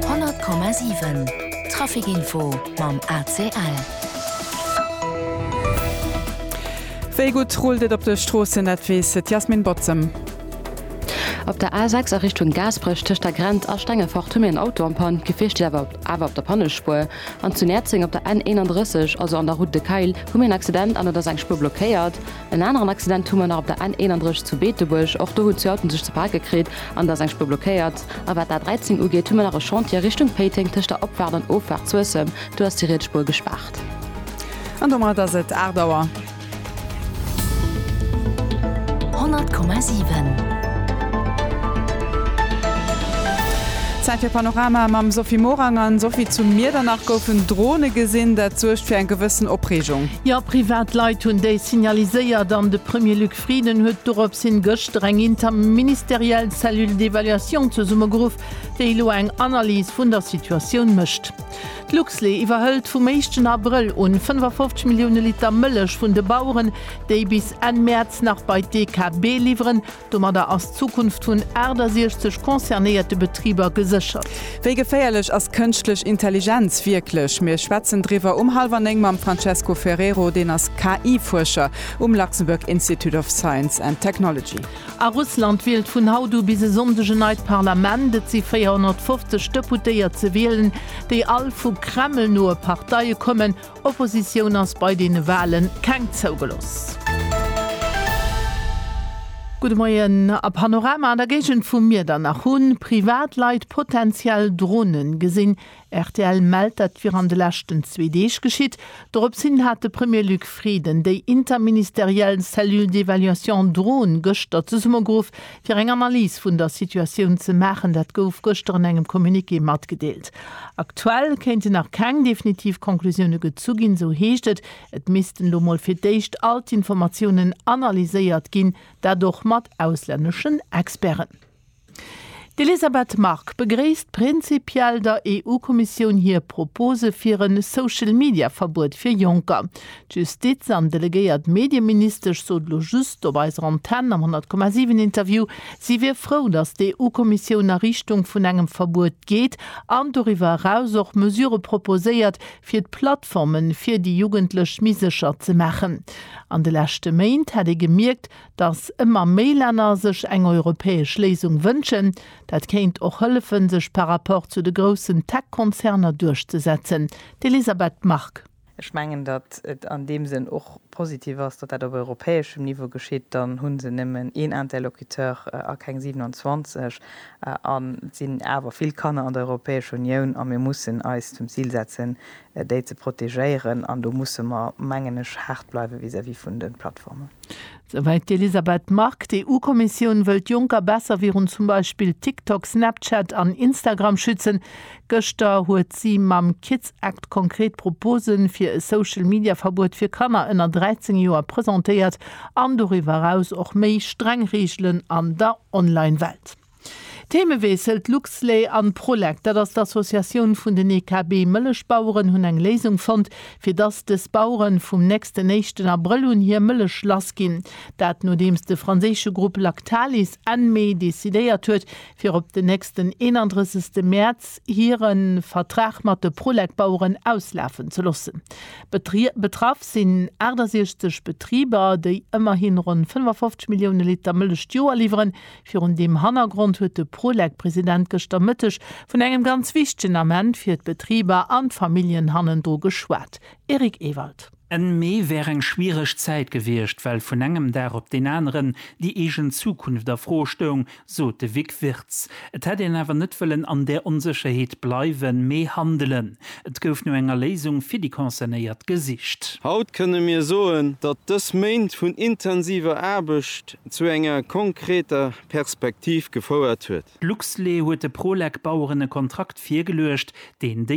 100,7 Trafic Info mam ACL. Wéi gutt rullt et op de Stroossen, dat weess d'Yasmin Botzem. Op der A6 a Richtung Gaasperech tëscht der Grenz a Stengefort hu mir en Auto am Panne. D'Gefier steet awer awer op der Pannespuer. An zu Näerzeng op der N 31, also an der Route de Kayl, hu mir en Accident an et ass eng Spuer blockéiert. En aneren Accident hu mer nach op der N 31 zu Beetebuerg. Och do hunn zwee Autoen sech ze pake kritt an et ass eng Spuer blockéiert. A wat d'A 13 ugeet, hu mer nach e Chantier Richtung Péiteng tëscht der Opfaart an Offaart Suessem. Do ass déi riets Spuer gespaart. An domat ass et 8 Auer. 100,7. Zäit fir Panorama mam Sophie Morang. An Sophie, zu Miedernach goufen Drone gesinn. Dat suergt fir eng gewëssen Opreegung. Jo, privat Leit hunn déi signaliséiert an de Premier Luc Frieden huet dorops hin gëschter eng interministeriell Cellule d'évaluation zesummegeruff, déi elo eng Analys vun der Situatioun mécht. D'Luxlait iwwerhëlt vum éischten Abrëll un 55 Millioune Liter Mëllech vun de Baueren, déi bis Enn Mäerz nach bei d'EKB liwweren, Domadder ass d'Zukunft vun 68 concernéierte Betriber geséchert. Wéi geféierlech ass kënschtlech Intelligenz wierklech? Mir schwätzen driwwer um hallwer néng mam Francesco Ferrero, deen ass KI-Fuerscher um Luxembourg Institute of Science and Technology. A Russland wielt vun haut u bis e Sonndeg en neit Parlament. Et si 450 Deputéiert ze wielen, déi all vu Kreml-noe Parteie kommen. Oppositioun ass bei deene Wahlen keng zougeloss. Gudde Moien. A Panorama an der Géigend vu Miedernach hu Privatleit potenziell Dronen gesinn. Rtl mellt, dat wier an de leschten zwee Deeg geschitt. Dorops hin hat de Premier Luc Frieden déi interministeriell Cellule d'évaluation Drone gëschter zesummegeruff. fir eng Analys vun der Situatioun ze maachen. Dat gouf gëschter an engem Communiqué matgedeelt. Aktuell kéinten nach keng definitiv Conclusioune gezu ginn, sou heescht et. Et missten elo mol fir d'éischt all d'Informatiounen analyséiert ginn, dat och mat auslänneschen Experten. D'Elisabeth Margue begréisst prinzipiell der EU-Kommissioun hir Propose fir e Social-Media-Verbuet fir Jonker. D'Justiz an delegéiert Medieministesch sot elo just op eiser Antenn am 100,7 Interview, si wier frou, datt d'EU-Kommissioun a Richtung vun engem Verbuet geet an doriwwer eraus och Mesure proposéiert, fir d'Plattforme fir déi Jugendlech méi sécher ze maachen. An de leschte Méint hätt ee gemierkt, datt ëmmer méi Länner sech eng europäesch Léisung wënschen. Dat kéint och hëllefen, sech par rapport zu de groussen Tech-Konzerner duerchzesetzen. D'Elisabeth Margue. Ech mengen, datt et an deem Sënn och positiv ass, datt dat op europäeschem Niveau geschitt. Dann hu se nëmmen een Interlocuteur a keng 27 a et sinn awer vill Kanner an der Europäescher Unioun a mir mussen eis zum Zil setzen, déi ze protegéieren an do musse mer, mengen ech, haart bleiwe vis-à-vis vun de Plattformen. Souwäit d'Elisabeth Margue. D'EU-Kommissioun wëllt Jonker besser virun zum Beispill TikTok, Snapchat an Instagram schützen. Gëschter huet si mam Kids Act konkret Propose fir e Social-Media-Verbuet fir Kanner ënner 13 Joer presentéiert an doriwwer eraus och méi streng Reegelen an der Online-Welt. Themeweessel, D'Luxlait an d'Prolec, dat ass d'Associatioun vun den EKB Mëllechbaueren, hunn eng Léisung fonnt, fir dass des Bauere vum nächsten éischten Abrëll un hir Mëllech lass ginn. Dat nodeems de franséische Grupp Lactalis Enn Mee decidéiert huet, fir op den nächsten 31 Mäerz hire Vertrag mat de Prolec-Baueren auslafen ze loossen. Betraff sinn 68 Betriber, déi ëmmerhi ronn 55 Millioune Liter Mëllech d'Joer liwweren, Virun deem Hannergrond huet de Prolec-President gëschter Mëtteg vun engem ganz wichtegen Ament fir d'Betriber an d'Familljen hannendru geschwat. Eric Ewald. Enn Mee wär eng schwiereg Zäit gewiescht, well vun engem Dag op deen aneren déi eegen Zukunft a Fro stoung, sot de Vic Wirtz. Et hätt een awer net wëllen an där Onsécherheet bleiwen, mee handelen. Et gouf no enger Léisung fir déi Concernéiert gesicht. Haut kënne mir soen, datt dës Méint vun intensiver Aarbecht zu enger konkreter Perspektiv gefouert huet. D'Luxlait huet de Prolec-Baueren e Kontrakt virgeluecht, deen déi.